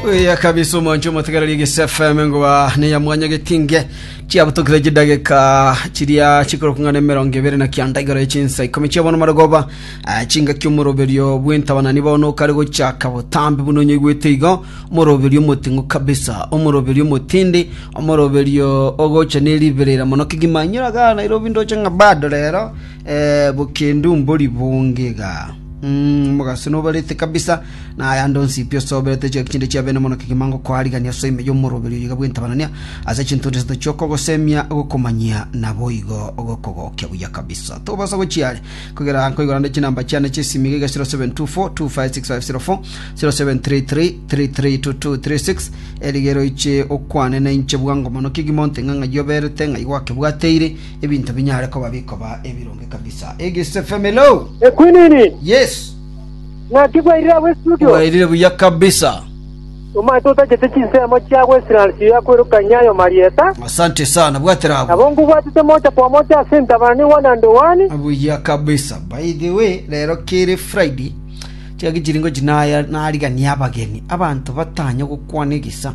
Oya kabisa omonche omotegereri gese FM ngoba neya mwanya getinge chiabutokire chidageka chiria chikoro kungana emerongo ebere na kianda igoro echinsa ikomi chiabono marogoba ah, chinga kiomoroberio bwentabanani bono okare gochaka botambi buno onyoigwete igo omoroberio omoting'u kabisa omoroberio omotindi omoroberio ogocha neriberera mono kigima nyora ga nairobi ndoche ng'a bado rero eh, bokendu mbori bonge iga Omogaso nobarete kabisa, na ayande onsi pi osoberete chiagera chinde chiabene mono kegima ngokoarigania ase ime y'omoroberi oyo iga bw'entabanania, ase chinto onde isato chi'okogosemia, ogokomanyia, naboigo ogokogokia buya kabisa. Tobasa gochia are, kogera nkoigora nde chinamba chiane chi'esimi iga iga 0724256504, 0733332236, erigere oiche okwane nainche bwango mono kegima onte ng'a ng'ai oberete, ng'ai gwakebwateire, Ebinto binyare koba bikoba ebironge kabisa. Egise family oh! Ekwinini, Yes. ng'aki bwairire agwo estudio? Bwairire buya kabisa. Omanyete otagete chinsemo chiago Israel chiya kwerokania ayo marieta, Asante sana. Bwatera abwo. nabo ngobwatete mocha kwa mocha ase entabani one and one. Buya kabisa. By the way, rero kere Friday chiaki chiringo chinaya narigania abageni. Abanto batanye gokwana egisa.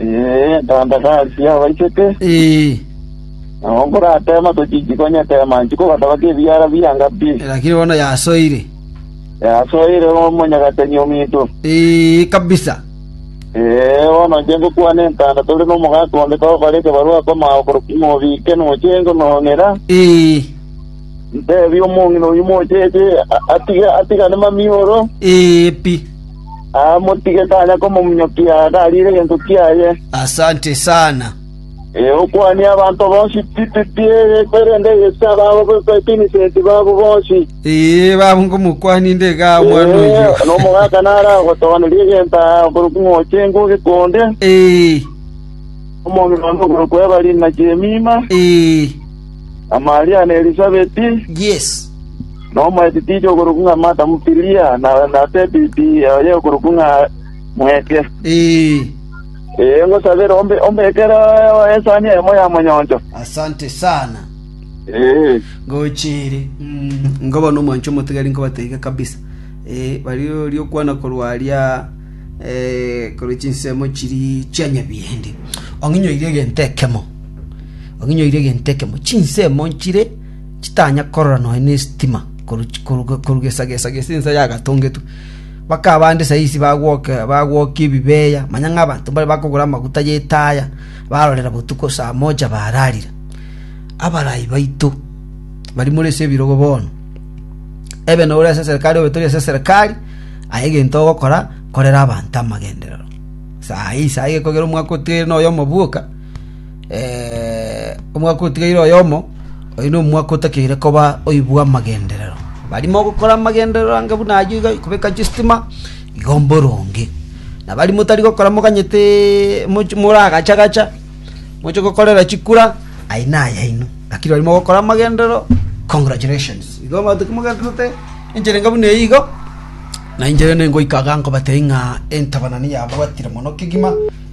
Ee, tata tasi abaiseke, Ee, nabo nkoratema tochichi konyetema nchi kogataba kebiara bianga pi. lakini bono yasoire. Yasoire omonyagateni ominto. Ee, kabisa. Ee, bono inche ngokwana entanda tore nomogaka onde togokora ekebarua komao korokwa mobike noche ngonong'era. Ee, Ntebie omong'ina oyio mocheche a- atige atigane mamioro. ee, pi. Aa, motige, tanya komomunyokia, tariire gento kiaye. Asante sana. Ee, okwanie abanto bonsi pi pi pi, erinde yese ababo b'Ebinisenti babo bonsi. Ee, babo ngomokwania inde iga omwana Ee, oyio. nomogaka naragotogonerie egento aa okorokwa ing'ochi enguge konde, Ee, omong'ina one okorokwa Ebalini na Jemima, ee, na Maria na Elisabeti, Yes. na omoetitinyi okorokwa ng'a Martha Motiliya, na na Sebedi oye okorokwa ng'a Mweke. Ee. Ee, ngosabere ombe ombekere esani eyemo y'amanyoncho. Asante sana. Ee. Ngocha ere. Mm, nkoba nomwancho omotigari nkobatebia kabisa. Eh, baria oria okwana korwa aria eh, korwa chinsemo chiri chia nyabiende. Ong'inyoire egento ekemo. Ong'inyoire egento ekemo, chinsemo nchire chitanya korora nonya nesitima korwa gesagesa gese ensa yagatongetwe. Bakaba bande saisi bagwokia ebibeeya, manya ng'a abanto mbare bakogora amaguta y'etaaya barorera botuko saa moja baararire. Abarai baito baria more ase ebirogo bono, ebe nore ase eserikari obe tori ase eserikari, aye egento ogokora korera abanto amagenderero. Saa eye saa eye ekogera omwaka otigaire noyomo bwoka. Omwaka otigaire oyomo, oyo nomwaka otakeire koba oibwa amagenderero. Baria mogokora amagenderero anga buna ayio iga kobeka chistima, igo mboronge. Na baria motari gokora moganyete mochi moragacha gacha, moche gokorera chikura, ayio nayaino. Lakini baria mogokora amagenderero, congratulations. Igo abanto kimogendererete enchera enga buna eyio igo, na inche rende ngoika iga nkobatebia ng'a entabana niyabwatire mono kegima.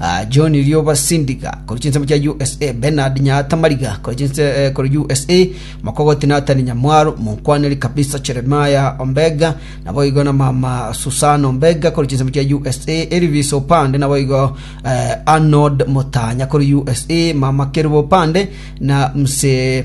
Ah, John Rioba Sindiga, korwa chinsemo chia USA, Bernard Nyaata Mariga, korwa chinse eh, korwa USA, Mokogoti Nathan Nyamwaro, Monkwaneri kabisa Jeremiah Ombega, nabo igo na mama Susan Ombega, korwa chinsemo chia USA, Elvis Opande, nabo igo eh, Arnold Motanya, korwa USA, mama Kerubo Opande, na mse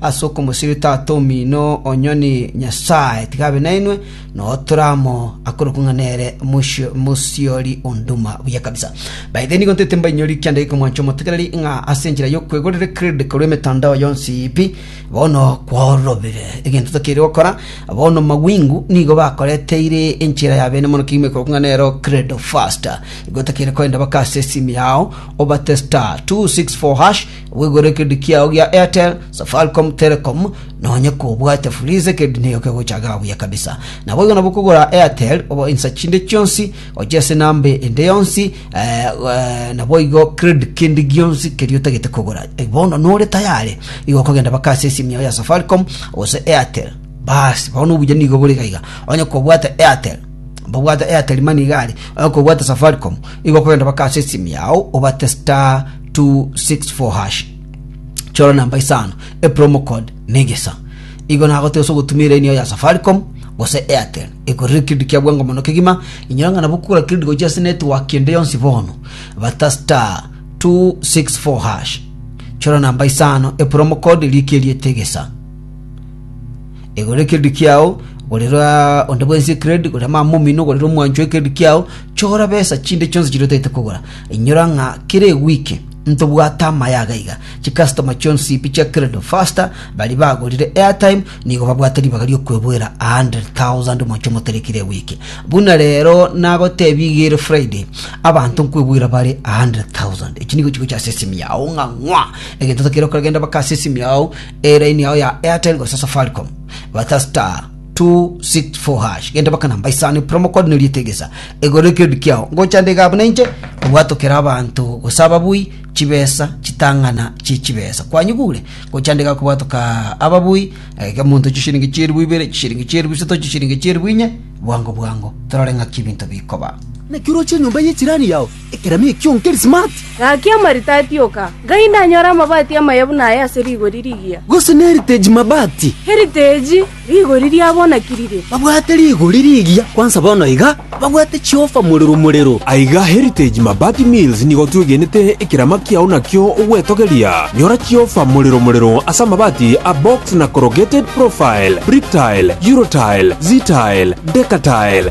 ase okomosibia Tata omino o nyoni Nyasae, tiga abe nainwe, nao tore amo, akorokwe ng'a nere Mosi- Mosiori o Nduma. Buya kabisa. By the way, nigo ntete mbainyori kianda giko mwanche omotegereri, ng'a ase enchera y'okwegorera credit korwa emetandao yonsi pi, bono kwaororobire. Egento tokeire gokora, bono mawingu nigo bakoreteire enchera ya bene mono kegima ekorokwa ng'a nero credo faster. Igo tokeire korenda baka ase esimi yao, obate star 264 hash, Obwegwere ekerendi kiao gia Airtel, Safaricom, Telecom, na onye kobwate Fuliza ekerendi nigo kegochaga buya kabisa. Naboigo nabo kogora Airtel obo insa chinde chionsi gochia ase enamba ende yonsi eh, eh, naboigo credit kindi gionsi keria otagete kogora. Eh, Bono nore tayare igo okogenda baka ase esimu yao ya Safaricom gose Airtel. Basi bono obuya nigo bore gaiga. Onye kobwate Airtel babwate Airtel mani igari onye kobwate Safaricom igo okogenda baka ase esimu yao obate star 264 hash chora namba isano epromo code negesa igo nagoteba ase ogotuma eraini yao ya safaricom gose airtel ekorire kiridi kia bwango mono kegima inyora ng'a nabo kogora kiridi gochia ase network ende yonsi bono bata star 264 hash chora namba isano epromo code rikia erieta egesa egorire kiridi kiao gorera onde bwensi ekiredi gorera mama omino gorera omwancho ekiredi kiao Chora besa chinde chionsi chiria otagete kogora. Inyora ng'a kera ewiki ntobwate amaye aga iga. Chikastoma chionsi pi chia Credit Faster baria bagorire airtime nigo babwate ribaga ri'okweboera 100,000 omochie omotari kera ewiki. Buna rero nagotebia iga ere Friday, abanto nkweboera bare 100,000. Echi nigo chigocha ase esimi yao ng'a ng'wa. Egento otakeire gokora genda mpaka ase esimi yao, eraini yao ya Airtel gose Safaricom. Bata star 264 hash genda baka namba isano promo code neri etegesa egoro ekiodi kiao ngocha nde iga buna inche obwatokera abanto gose ababui chibesa chitang'ana chie chibesa kwanyigure ngocha nde iga kobwatoka ababui eh, iga monto chishiringi chieribu ibere chishiringi chieribu isato chishiringi chieribu inye bwango bwango torore ng'aki ebinto bikoba Naki oroche enyomba y'echirani yao Ekerami ekio nkeri smart. Gaki amarita atioka, ngai nanyore amabati amaya buna aya ase rigori rigiya. Gose n'eriteji mabati. Eriteji, rigori riabonakirire. Babwate rigori rigiya kwansa bono iga, babwate chiofa morero morero. Aiga Heritage Mabati Mills nigo twegenete ekerama kiao nakio ogwetogeria. Nyora chiofa morero morero ase amabati a box na corrugated profile, Bricktile, Eurotile, Ztile, Decatile,